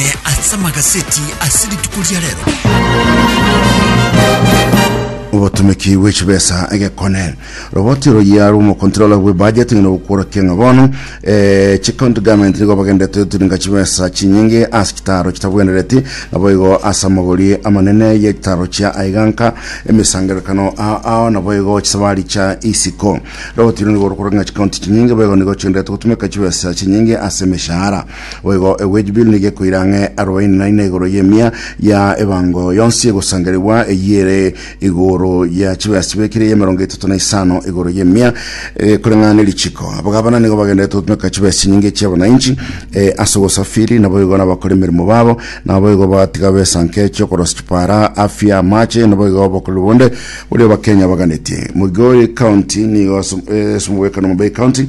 eh, ase amagaseti ase rituko ria rero obotumiki bw'echibesa egekone roboti royia rw'omokontrola bw'ebudget ng'ina ogokworokia ng'a bono eh, chicounty government nigo bagendete turinga chibesa chinyinge ase chitaro chitabwenereti nabo igo ase amagori amanene ye chitaro chia aiganka emisangerekano a- ao nabo igo chisabari cha isiko roboti rwo nigo rokora ng'a chicounty chinyinge baigo nigo chigendete gotumeka chibesa chinyinge ase emeshahara Boigo egwejubilu nigekoira ang'e arobaini na ina igoro y'emia ya ebango yonsi egosangeregwa, eyio ere igoro ya chibesa chibekire y'emerongo etato na isano igoro y'emia, egekoreng'ana ne richiko. Abagabana nigo bagenderete gotumeka chibesa chinyinge chi'abananchi eh, ase obosafiri, naboigo nabakora emeremo babo, naboigo bagatiga besa nke chi'okorosia chipara, afya, amache, naboigo obokoreri bonde boria Abakenya baganetie. Migori County nigo ase eh, ase omogwekano Homa Bay County,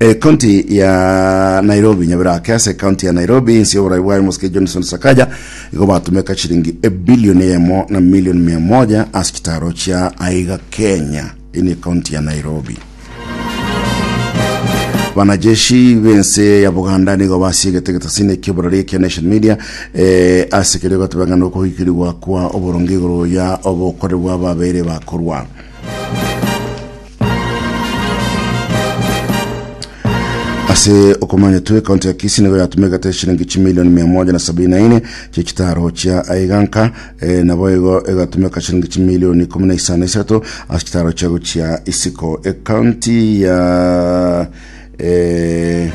Ecounty ya Nairobi, Nyabera ake ase ecounty ya Nairobi inse y'oborai bwaye Mosike Johnson Sakaja igo batumeka chiringi ebilioni eyemo na milioni mia moja ase chitaro chia aiga Kenya ini ecounty ya Nairobi. Banajeshi bense ya Buganda nigo basiegete getasini ekiborori ekia Nation Media eh, ase kerio gatebang'ana okohikirigwa kwa oboronge igoro ya obokore bwa babere bakorwa. ase okomanya tu ekaunti ya kisi nigo yatumegete eshiringi chimilioni mia moja na sabini na ine chia chitaro chia aiganka eh, nabo igo egatumeka shiringi chimilioni ikumi na isano na isato ase chitaro chiago chia isiko ekaunti ya eh,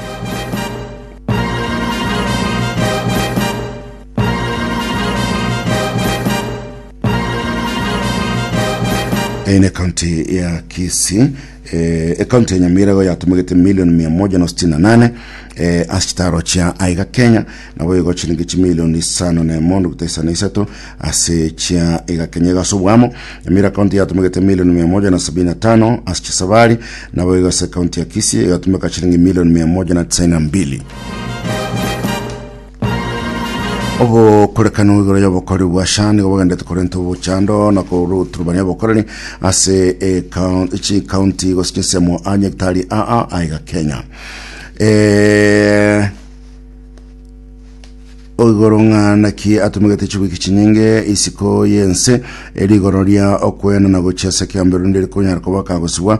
Eye ne county ya Kisii eh, ecounty ya Nyamirago yatomogete milioni mia moja na sitini na nane eh, ase chitaro chia aiga Kenya nabo igo chiringi chimilioni isano na emo nukta isano na isato ase chia iga Kenya igo ase obwamo Nyamira county yatomogete milioni mia moja na sabini na tano ase chisabari nabo igo ase county ya Kisii yatomeka chiringi milioni mia moja na tisaini na mbili Obokorekano igoro y'obokori bwa Sha nigo bogendete korenta obochando na koruturubania obokoreri ase ekaun- chikaunti gose chinsemo a nyagetari aa aiga Kenya Eh, oigoro ng'a naki atumegete chiwiki chinyinge isiko y'ense erigoro ria okwena na gochia ase ekeambero ndirikonyara koba kagosibwa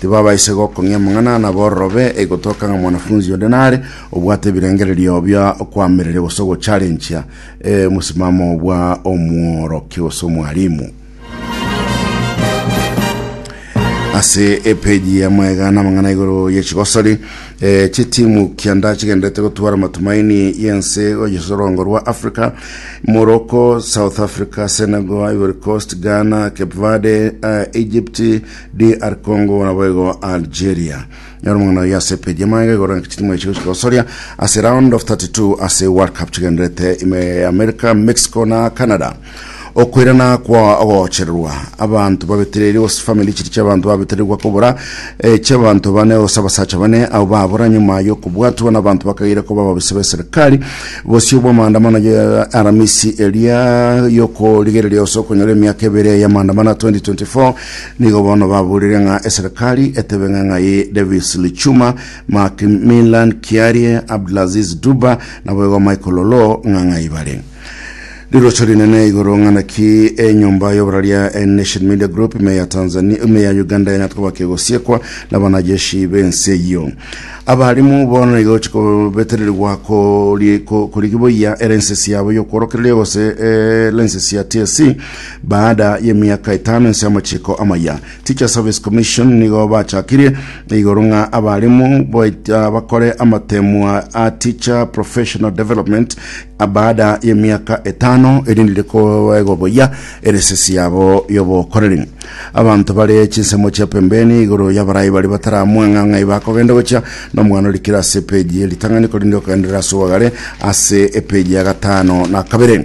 tibabaisa gokong'ia amang'ana na bororobe, egotoka ng'a mwanafunzi onde nare obwate ebirengererio bia okoamereria gose ogocharenchia eh, omosimamo bwa omworokia gose omwalimu. ase epeji ya maega na amang'ana igoro ye chigosori eh, chitimu kianda chigenderete gotwara matumaini yense oyesorongo rwa africa morocco south africa senegal ivory coast ghana cape verde eh, egypt DR Congo boigo Algeria. Nyora omong'ina oyo ase page yamaiga igoro naki chitimu echi gochika gosoria ase round of 32 ase World Cup chigenderete ime ya America, Mexico na Canada. Okoirana kwa ogochererwa abanto babetereiri gose family chiri chiabanto babetererigwa kobora eh, chiabanto bane gose abasacha bane abo babora nyuma yokobwatwa nabanto bakageire koba ababisa beserikali bosio bwa maandamano ya aramisi eria yokorigereria gose okonyora emiaka ebere ya maandamano ya 2024 Nigo bono baburire ng'a eserekari etebe ng'a ng'ai Davis Lichuma, Macmillan Kiarie, Abdulaziz Duba na boigo Michael Oloo ng'a ng'ai bare. Rirocho rinene igoro ng'a naki enyomba y'oboraria eh, Nation Media Group ime ya Tanzania ime ya Uganda yanyatwa goba kegosiekwa na banajeshi b'ense eyio. Abarimu bono nigo chikobetererigwa kori- ko- korigiboyia elenses yabo y'okworokereria gose eh, lenses ya TSC Baada y'emiaka etano ense y'amachiko amaya, Teacher Service Commission nigo bachakirie igoro ng'a abarimu baita bakore amatemwa a Teacher Professional Development baada y'emiaka etano erinde rikoegwa boyia eresesi yabo y'obokoreri. Abanto bare chinsemo chia pembeni igoro y'abarai baria bataramwang'a ng'ai bakogenda gochia nomwana orikire ase epeji y'eritang'ani korende okoenderera ase obogare ase epeji ya gatano na kabere.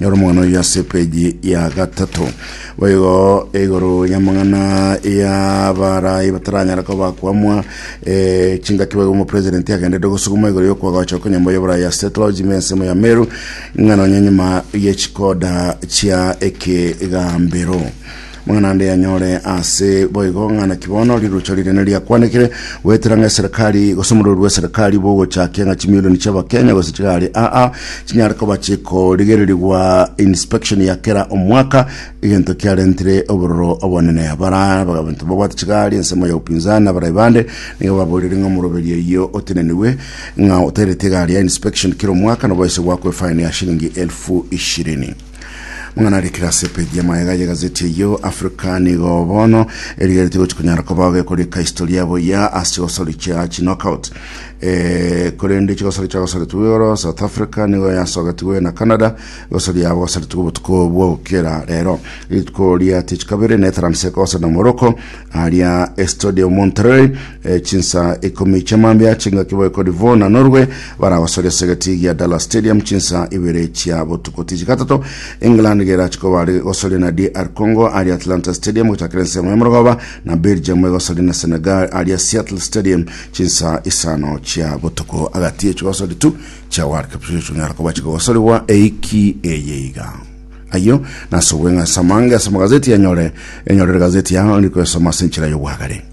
Nyora omogano oyio ase epeji ya gatato. Boigo igoro y'amang'ana y'abarai bataranyara koba kwamwa eh, chingaki boigo omopresidenti agenderete gosuguma igoro y'okwa gocha okonyomba y'oborai ase clergymen ensemo ya Meru ng'a nonye nyuma y'echikoda chia ekegambero Mang'ana ande anyore ase boigo ng'a naki bono rirocha rinene riakwanekire goetera ng'a eserekari gose omorori bw'eserekari bogochakia ng'a chimilioni chi'Abakenya gose chigare aa chinyare koba chikorigererigwa inspection ya kera omwaka egento kiarentire obororo obonene abara abanto babwate chigari ensemo ya upinzani na abarai bande nigo baborire ng'a omoroberi oyio oteneniwe ng'a otairete egari ya inspection kera omwaka nobaise gwakwa efaini ya shilingi elfu ishirini. Ng'a narikire ase epeji ya magega y'egazeti eyio, Africa nigo bono erigeretie gochi konyara kobao gekorika historia boyia ase chigosori chia chinockout. Eh, korende chigosori chiagosaretigwe igoro, South Africa nigo yasogetigwe na Canada, egosori yabo gosaretigwe obotuko bwa gokera rero. Rituko ria tichi kabere, Netherlands ekogosana Morocco, aria Estade Monterrey, E, chinsa ikomi chiamambia chingaki boe kori bo na Norway baragosoria ase egati gia Dallas Stadium chinsa ibere chia botuko tichi gatato. England gerachoka bare gosoria na DR Congo aria Atlanta Stadium gochakera ensemo ya morogoba na Belgium egosoria na Senegal aria Seattle Stadium chinsa isano chia botuko. Agati echi gosori tu chia World Cup chicho chinyara koba chigogosorigwa eiki eye iga. Ayio nase obweng'asi amange ase amagazeti anyore enyorere gazeti yao ndi koesoma ase enchera y'obwagare.